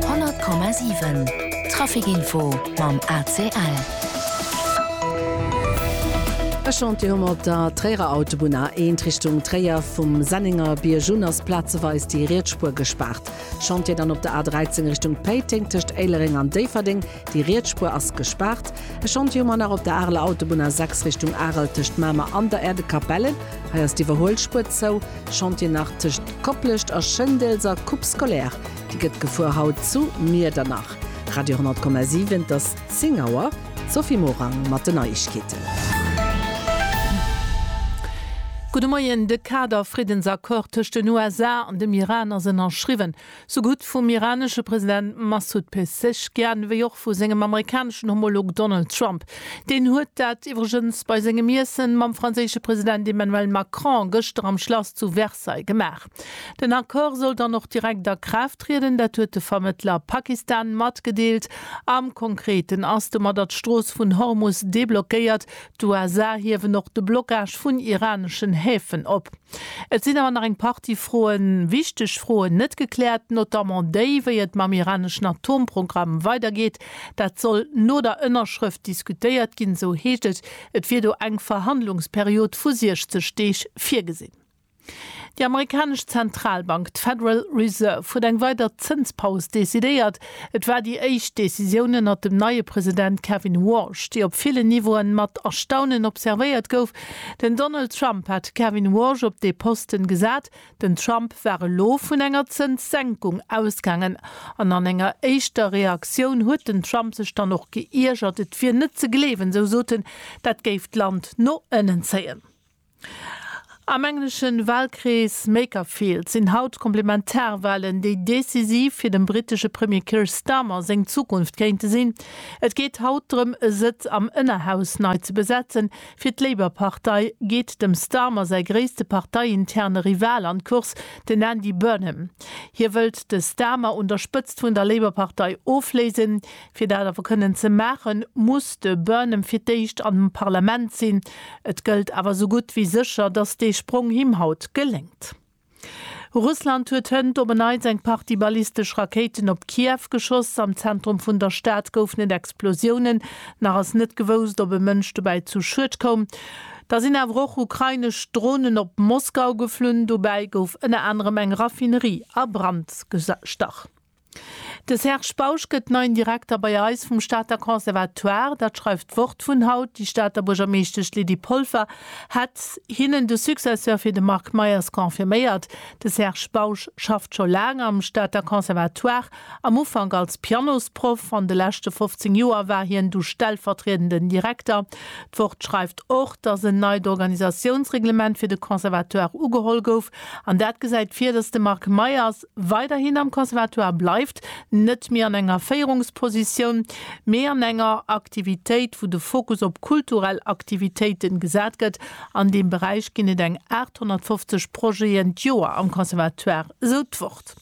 100,7 Traficinfo mam ACL. E Chantier hu mer op der Tréierer Autobunn, A1 Richtung Tréier. Vum Sennenger Bierg un ass plazeweis déi riets Spuer gespaart. Chantier dann op der A13 Richtung Péiteng tëscht Éilereng an Déifferdeng. Déi Rietsspuer ass gespaart. E Schond wier mer nach op der Areler Autobunn A6 Richtung Arel tëscht Mamer an der Erdekapelle. Hei ass d'Iwwerhuelspuer zou. Schond wier nach tëscht Koplescht a Schëndels a Coupe Scolaire. Déi gëtt gefuer haut zu Miedernach. Radio 10,7 Et ass 10 Auer. D'Sophie Morang mat den Neiegkeeten. Gudde Moien, De Kader-Friddensaccord tëscht den USA an dem Iran ass ënnerschriwwen. sougutt vum iranesche President Massoud Pezeshkian wéi och vu sengem amerikaneschen Homolog Donald Trump. Deen huet dat iwwregens bei sengem Iessen mam franséische President Emmanuel Macron gëschter am Schlass zu Versailles gemaach. Den Accord soll dann och direkt a Kraaft trieden, dat huet de Vermëttler Pakistan matgedeelt. Am Konkreten ass domadder d'Strooss vun Hormus deblockéiert, D'USA hiewen och de Blockage vun iraneschen Häfen op. Et sinn awer nach eng Partie Froen, wichteg Froen, net gekläert, notamment déi, wéi et mam iraneschen Atomprogramm weidergeet. Dat soll no der Ënnerschrëft diskutéiert ginn, esou heescht et. Et wier do eng Verhandlungsperiod vu 60 Deeg virgesinn. Déi amerikanesch Zentralbank, d'Federal Reserve, huet eng weider Zënspaus decidéiert. Et war déi éischt Decisioun ënnert dem neie President Kevin Warsh, déi op villen Niveauen mat Erstaunen observéiert gouf. Den Donald Trump hat de Kevin Warsh op dee Posten gesat. Den Trump war elo vun enger Zënssenkung ausgaangen an an enger éischter Reaktioun huet den Trump sech dann och geiergert. Et wier net ze gleewen, esou soten, dat géif d'Land no ënnen zéien. Am englesche Walkrees Makerfield sinn haut d'Komplementarwalen, déi decisiv fir dem brittesche Premier Keir Starmer seng Zukunft kéinte sinn. Et geet haut drëm, e Sëtz am Ënnerhaus nei ze besetzen. Fir d'Labour-Partei geet dem Starmer säi gréisste parteiinterne Rival an d'Course, den Andy Burnham. Hie wëllt de Starmer un der Spëtzt vun der Labour-Partei ofléisen. Fir dat awer kënnen ze maachen, muss de Burnham fir d'éischt an dem Parlament sinn. Et gëllt awer esou gutt wéi sécher, datt dee Sprong him haut geléngt. Russland huet hënt op en Neits eng Partie ballistesch Rakéiten op Kiew geschoss. Am Zentrum vun der Stad goufen et Explosiounen. Nach ass net gewousst, ob e Mënsch dobäi zu Schued koum. Da sinn awer och ukrainesch Dronen op Moskau geflunn. Dobäi gouf ënner anerem eng Raffinerie a Brand gestach. De Serge Bausch gëtt neien Direkter bei eis vum Stater Conservatoire. Dat schreift d'Wort vun haut. Déi Stater Buergermeeschtesch Lydie Polfer hätt hinnen de Successeur fir de Marc Meyers confirméiert. De Serge Bausch schafft scho laang am Stater Conservatoire, am Ufank als Pianosproff. An de leschte 15 Joer war hien du stellvertriedenden Direkter. D'Wort schreift och, datt en neit Organisatiounsreglement fir de Conservatoire ugeholl gouf. An dat gesäit vir, datt de Marc Meyers, weiderhin am Conservatoire bleift, net méi an enger Féierungspositioun, mee an enger Aktivitéit, wou de Fokus op kulturell Aktivitéiten gesat gëtt. An deem Beräich ginn et eng 850 Projeten d'Joer am Conservatoire, esou d'Wort.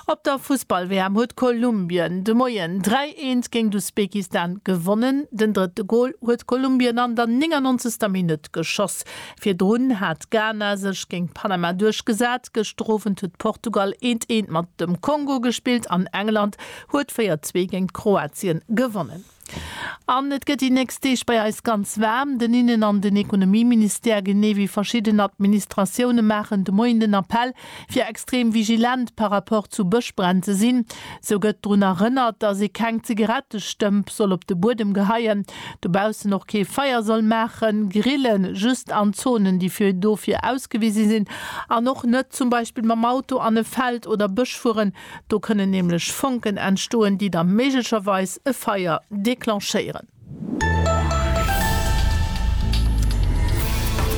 Op der Fussball-WM huet Kolumbien de Moien 3, 1 géint Usbekistan gewonnen. Den drëtte Gol huet Kolumbien an der 99. Minutt geschoss. Virdrun hat Ghana sech géint Panama duerchgesat, gëschter Owend huet Portugal eent eent mat dem Kongo gespillt an England huet 4, 2 géint Kroatien gewonnen. An et gëtt déi nächst Deeg bei eis ganz waarm. Den Innen an den Ekonomieministère, genee wéi verschidden Administratioune maachen de Moien den Appell, fir extrem vigilent par rapport zu Bëschbränn ze sinn. Sou gëtt drun erënnert, dass ee keng Zigarettestëmp soll op de Buedem geheien, dobaussen och kee Feier soll maachen, grillen, just an Zonen, déi fir dofir ausgewise sinn, an och net zum Beispill mam Auto an e Feld oder Bësch fueren, do kënnen nämlech Fonken entstoen, déi da méiglecherweis e Feier declenchéieren.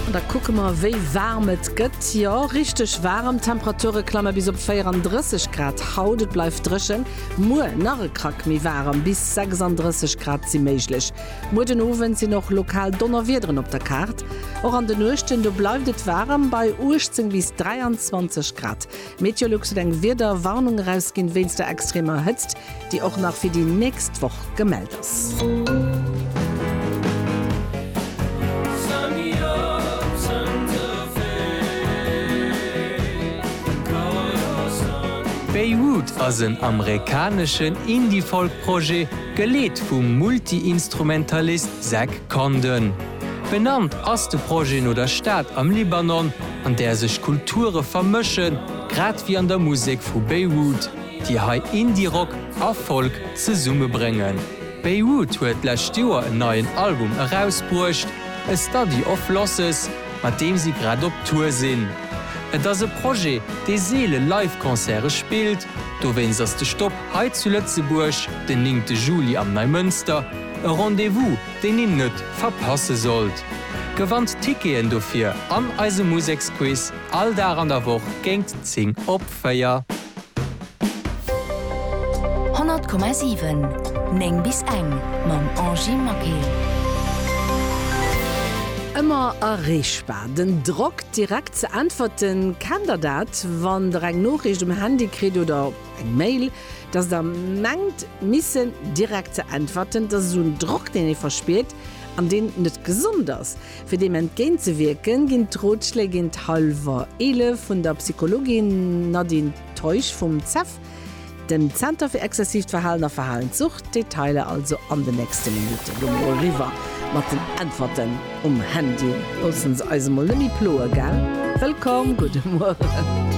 An da kucke mer wéi waarm et gëtt. Jo, richteg waarem, d'Temperature klamme bis op 34 Grad haut. Et bleift dréchen. Muer nach e Krack méi waarem, bis 36 Grad si méiglech. Muer den Owend sinn och lokal Donnerwiederen op der Kaart. Och an de Nuechten do bleift et waarem, bei 18 bis 23 Grad. Meteolux huet eng Wiederwarnung erausginn wéinst der extremer Hëtzt, déi och nach fir déi nächst Woch gemellt ass. Beirut ass en amerikaneschen Indie-Folk-Projet, geleet vum Multi-Instrumentalist Zach Condon. Benannt ass de Projet no der Stad am Libanon, an där sech Kulture vermëschen, grad wéi an der Musek vu Beirut, déi hei Indie-Rock a Folk zesummebréngen. Beirut huet d'lescht Joer en neien Album erausbruecht, A Study of Losses, mat deem si grad op Tour sinn. Et ass e Projet, dee seele Live-Concerte spillt, dowéinst ass de Stop hei zu Lëtzebuerg den 9 Juli am Neimënster e Rendez-vous, deen een net verpasse sollt. Gewannt Ticketen dofir an eise Museksquiz all Dag an der Woch géint 10 op 4. 100,7 9 bis eng mam Angie Maquet. Ëmmer erreechbar, den Drock direkt ze äntwerten. Kennt der dat, wann der eng Noriicht um Handy kritt oder. Eng Mail, dass der mengt missen direkt ze äntwerten, dass esou en Drock, deen ee verspiert an deen net gesond ass. Fir deem entgéint ze wierken, ginn d'Rotschléi géint hallwer 11 vun der Psychologin Nadine Teusch vum ZEV, dem Zenter fir exzessiivt Verhalen a Verhalenssucht. D'Detailer also an den nächste Minutten. Elo mol eriwwer mat den Äntwerten um Handy. Loosse se eis emol net méi ploe, gell? Wëllkomm, gudde Mueren.